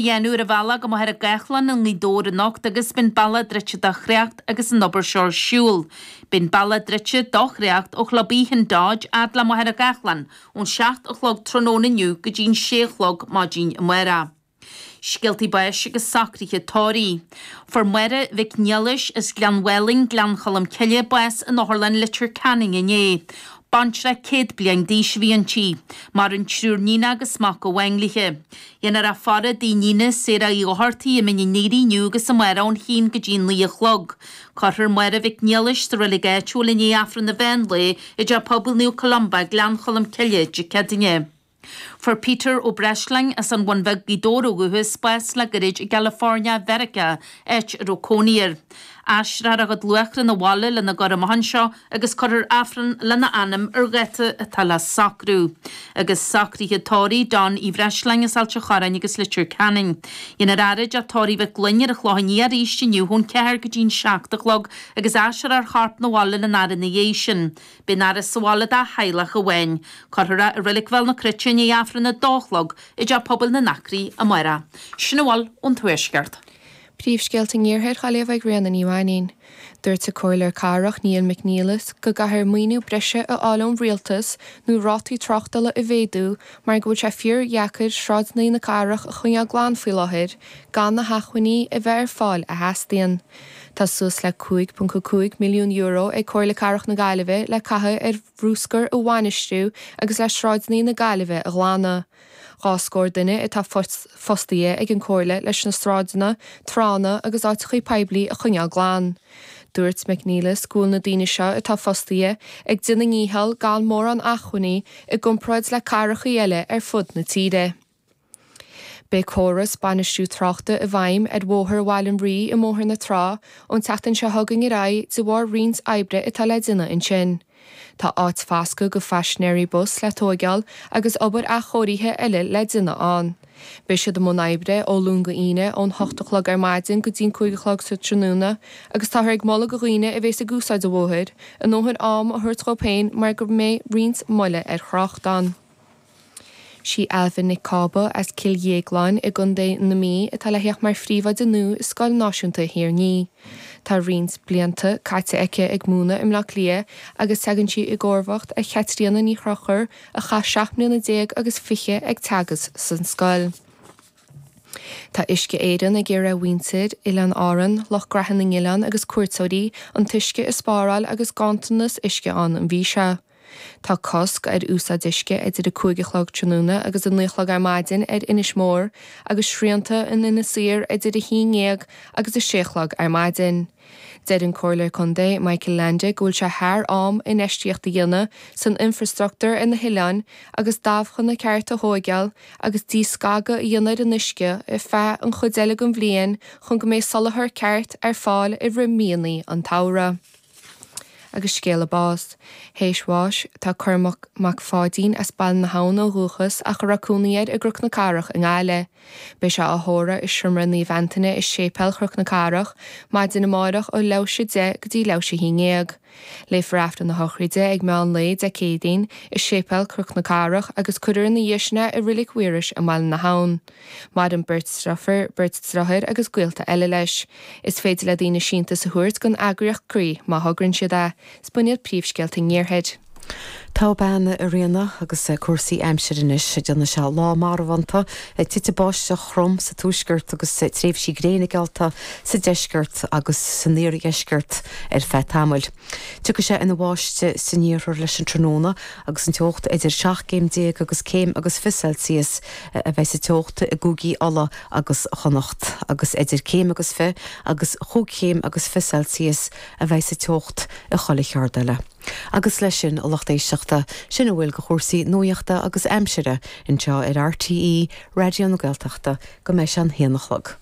Dhéanamh ar an bhealach go Machaire Gathlán i nGaoth Dobhair anocht agus beidh an bealach druidte do thrácht agus an obair seo ar siúl. Beidh an bealach druidte do thrácht ó Chlub Oíche an Dodge fhad le Machaire Gathlán ón seacht a chlog tráthnóna inniu go dtí'n sé a chlog maidin amárach. Scéaltaí báis agus socruithe tórraimh. Fuair Máire Mhic Niallais as Gleann Mhálainn, Gleann Cholm Cille, bás in Otharlann Leitir Ceanainn inné. Baintreach céad bliain d'aois a bhí inti. Maireann triúr níon agus mac amháin daoithe. Dhéanfar í a fhaire i dtigh a níona Sarah Uí Dhochartaigh i Mín an Aoire inniu agus amárach ón haon go dtí a naoi a chlog. Cuirfear Máire Mhic Niallais sa reilig áitiúil i ndiaidh Aifreann an mheán lae i dTeach Pobail Naomh Columba, Gleann Cholm Cille, Dé Céadaoine. Fuair Peter Ó Breisleáin as an Bhun Bheag, Gaoth Dobhair ó dhúchas, bás le gairid i gCalifornia Mheiriceá, áit a raibh cónaí air. Aistreofar a chuid luaithre na bhaile lena gcur amach anseo agus cuirfear Aifreann lena anam ar dháta atá le socrú. Agus socruithe tórraimh Donn Uí Bhreisleáin as Ailt an Chorráin agus Leitir Ceanainn. Dhéanfar é a fhaire i dTeach Tórraimh Mhic Fhloinn ar an Chlochán Liath arís inniu ón ceathair go dtí'n seacht a chlog agus aistreofar a chorp na bhaile lena fhaire ina dhiaidh sin. Beidh an fhaire sa bhaile dá theaghlach amháin. Cuirfear é i Reilig Bhéal na Cruite i ndiaidh Aifreann a dó a chlog i dTeach Pobail na nAcraí amárach. Sin a bhfuil ón Tuaisceart. Príomhscéalta an Iarthair Ghaillimh ag Ríona Ní Mhainnín. Dúirt an comhairleoir cathrach Niall McNelis go gcaithfear maoiniú breise a fháil ón Rialtas nó rátaí tráchtála a mhéadú mar go bhfuil sé fíordheacair sráideannaí na cathrach a choinneáil glan faoi láthair gan na hachmhainní a bheith ar fáil a theastaíonn. Tá suas le €5.5 milliún ag Comhairle Cathrach na Gaillimhe le caitheamh ar bhrúscar a bhainistiú agus le sráideannaí na Gaillimhe a ghlanadh. Dhá scór duine atá fostaithe ag an comhairle leis na sráideanna, tránna agus áiteachaí poiblí a choinneáil glan. Dúirt McNelis go bhfuil na daoine seo atá fostaithe ag déanamh a ndícheall gan mórán acmhainní i gcomparáid le cathracha eile ar fud na tíre. Beidh córas bainistiú tráchta i bhfeidhm ar Bhóthar Bhaile an Rí i mBóthar na Trá ón tseachtain seo chugainn ar aghaidh de bharr roinnt oibre atá le déanamh ansin. Tá áit fascadh do phaisinéirí bus le tóigeáil agus obair athchóirithe eile le déanamh ann. Beidh siad i mbun oibre ó Luan go Aoine ón hocht a chlog ar maidin go dtí an cúig a chlog sa tráthnóna agus táthar ag moladh do dhaoine a bhéas ag úsáid an bhóthair a ndóthain am a thabhairt dhóibh féin mar go mbeidh roinnt moille ar thrácht ann. Sí Ailbhe Nic Cába as Cill Dhéagláin i gContae na Mí atá le theacht mar phríomhoide nua i Scoil Náisiúnta Thír an Fhia. Tá roinnt blianta caite aici ag múineadh i mBleá Cliath agus teagann sí i gcomharbacht ar Chaitríona Ní Chonchúir a chaith seacht mbliana déag agus fiche ag teagasc san scoil. Tá Uisce Éireann ag iarraidh ar mhuintir Oileáin Árann, lucht gnaithe na n-oileán agus cuairteoirí, an t-uisce a spáráil agus ganntanas uisce ann an mhí seo. Tá cosc ar úsáid uisce idir 5 a chlog tráthnóna agus 9 a chlog ar maidin ar Inis Mór agus srianta in Inis Oírr idir 11 agus 6 a chlog ar maidin. Deir an Comhairleoir Contae Michael Leainde go bhfuil sé thar am infheistíocht a dhéanamh san infrastruchtúr ar na hoileáin agus dabhchanna cearta a thógáil agus díscagadh a dhéanamh ar an uisce ar feadh an chuid eile den bhliain chun go mbeidh soláthar ceart ar fáil i rith míonnaí an tsamhraidh. agus scéala báis. Tar éis bháis tá Cormac Mac Pháidín as Baile na hAbhann ó dhúchas ach a raibh cónaí air i gCroc na Cathrach i nGaillimhe. Beidh sé á thórramh i Seomra Naomh Antaine i Séipéal Chroc na Cathrach maidin amáireach ó leathuair théis 10 go dtí leathuair théis 11. Léifear Aifreann na Sochraide ag meán lae Dé Céadaoin i Séipéal Croc na Cathrach agus cuirfear ina dhiaidh sin é i Reilig Mhaorais i mBaile na hAbhann. Maireann beirt driofúr, beirt driothár agus gaolta eile leis. Is féidir le daoine síntiús a thabhairt don eagraíocht Croí má thograíonn siad é. 'S b'in iad príomhscéalta an Iarthair. Tá bean i Riona agus cúrsaí aimsire anois. Déanfaidh sé lá marbhánta, titfidh báisteach throm sa tuaisceart agus tréimhsí gréine geallta sa deisceart agus san iardheisceart ar feadh tamaill. Tiocfaidh sé ina bháisteadh san iarthar leis an tráthnóna agus an teocht idir seacht gcéim déag agus céim agus fiche Celsius a bheidh sa teocht i gcúigí Uladh agus Chonnacht agus idir céim agus fiche agus chúig chéim agus fiche Celsius a bheidh sa teocht i chuile cheaird eile. Agus leis sin, a lucht éisteachta, sin a bhfuil de chúrsaí nuaíochta agus aimsire anseo ar RTÉ Raidió na Gaeltachta go mbeidh sé an haon a chlog.